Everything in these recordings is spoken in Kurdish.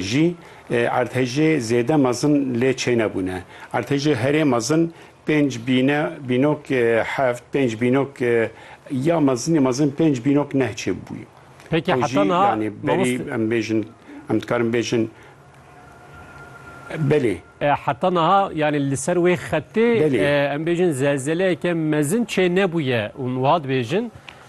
jî erdhejê zêde mezin lê çênebûne. Erdhejê herê mezin pênc bîne bînok heft, pênc bînok ya mezinê mezin pênc bînok neh çê bûye. Peki Ew jî heta niha yanî berî mamoste em bêjin em dikarin bêjin belê. E, heta niha yanî li ser wê xetê Belê. e, em bêjin zelzeleyeke mezin çênebûye û wiha dibêjin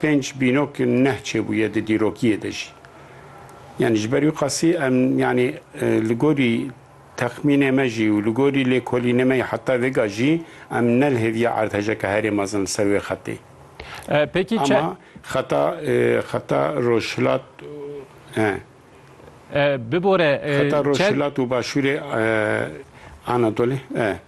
Pênc bînok neh çêbûye di dîrokiyê de jî. Yanî ji ber wî qasî em yanî li gorî texmînê me jî û li gorî lêkolînê me yê heta vêga jî em nelhêviye erdhejeke herê mezin li ser wê xetê. Pêkî çend. Ama xeta xeta rojhilat e. Bibore. Xeta rojhilat û başûrê Anadolê e.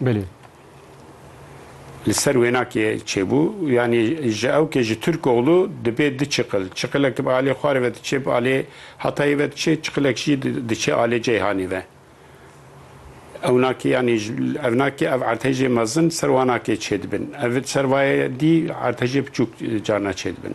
Belê. Li ser wêna kê çêbû, yanî ji ew kê ji Tirkoglû dibê du çiqil. Çiqilek di bi alê Xwarê ve diçê, bi alê Hatayê ve diçê, çiqilek jî diçê alê Ceyhanê ve. Ewna kê yanî evna kê ev ertejê mezin ser wana kê çêdibin. Ev li ser vayê dî ertejê biçûk carna çêdibin.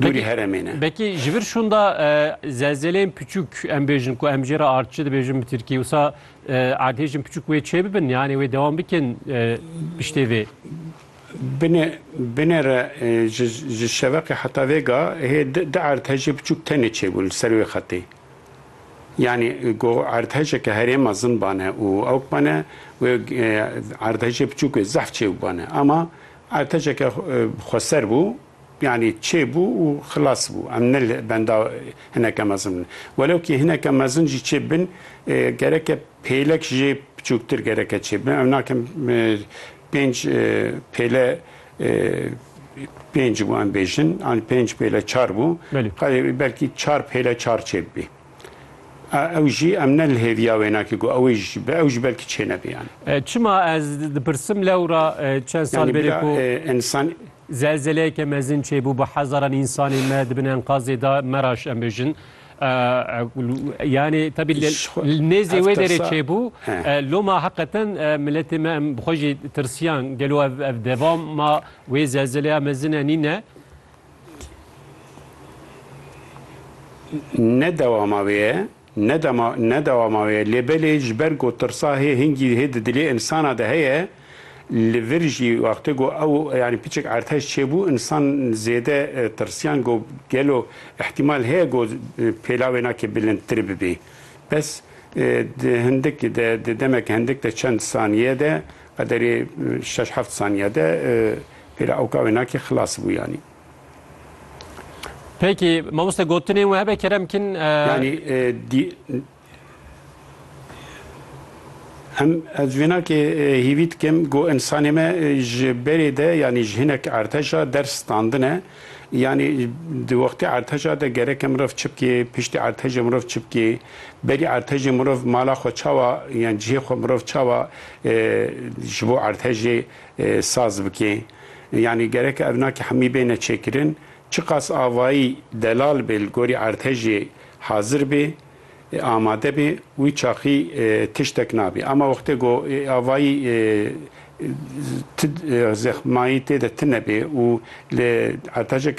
Dûrî heremê ne. Bekî ji vir şûnda zelzeleyên piçûk em bêjin ku em jê re artçi dibêjin bi tirkî wisa erdhêjin piçûk wê çêbibin yanê wê dewam bikin piştê vê. Binê binê re ji şeveqê heta vêga hê di erdhejê piçûk tenê çêbûn li ser wê xetê. Yani go erdhece ke herê mezin bane û ewk bane wê erdhece piçûk wê zehf çêbû bane. Ama Arteceke xweser bû, yanî çê bû û xilas bû. Em ne li benda hineke mezin bin. Welewkî hineke mezin jî çê bin, gereke pêlek jê piçûktir gereke çê bin. Ew nakim pênc pêle pênc bû em bêjin, yanî pênc pêle çar bû. Belê. Belkî çar pêle çar çê bibî. Ew jî em ne li hêviya wê nake ku ew ê ji ew ji ber kiçê nebe yan. Çima ez dipirsim lewra çend sal bêrê ku însan. Zelzeleyeke mezin çêbû bi hezaran însanên me di bin enkazê de meraş em bêjin. Yani tabi nêzê wê derê çêbû loma heqeten miletê me em xwe jî tirsiyan gelo ev devam ma wê zelzeleya mezine nîne. Ne dewama wê ye, ne dema ne dewama wê ye lê belê ji ber ku tirsa hê hingî hê di dilê insana de heye li vir jî wextê ku ew yanî piçik erteş çêbû insan zêde tirsiyan ku gelo îhtîmal heye ku pêla wê nakê bilindtir bibê bes di hindik de di demek hindik de çend sanîye de Qederê şeş heft saniye de pêra oka wê nakê xilas bû yanî. Peki mamoste gotinên we hebe kerem kin. Yanî dî Em ez vênakê hîvî dikim ku insanê me ji berê de yanî ji hinek erteşa ders standine. Yanî di wextê erteca de gereke mirov çi bikê, piştî ertejê mirov çi bikê, berî ertejê mirov mala xwe çawa yan cihê xwe mirov çawa ji bo ertejê saz bikê. Yanî gereke evnakî hemî bêne çêkirin. Çiqas avayî delal bê li gorî ertejê hazir bê. Amade bê, wî çaxî tiştek nabî. Ama wextê ku avayî ti zexmayî tê de tine bê û li erteceke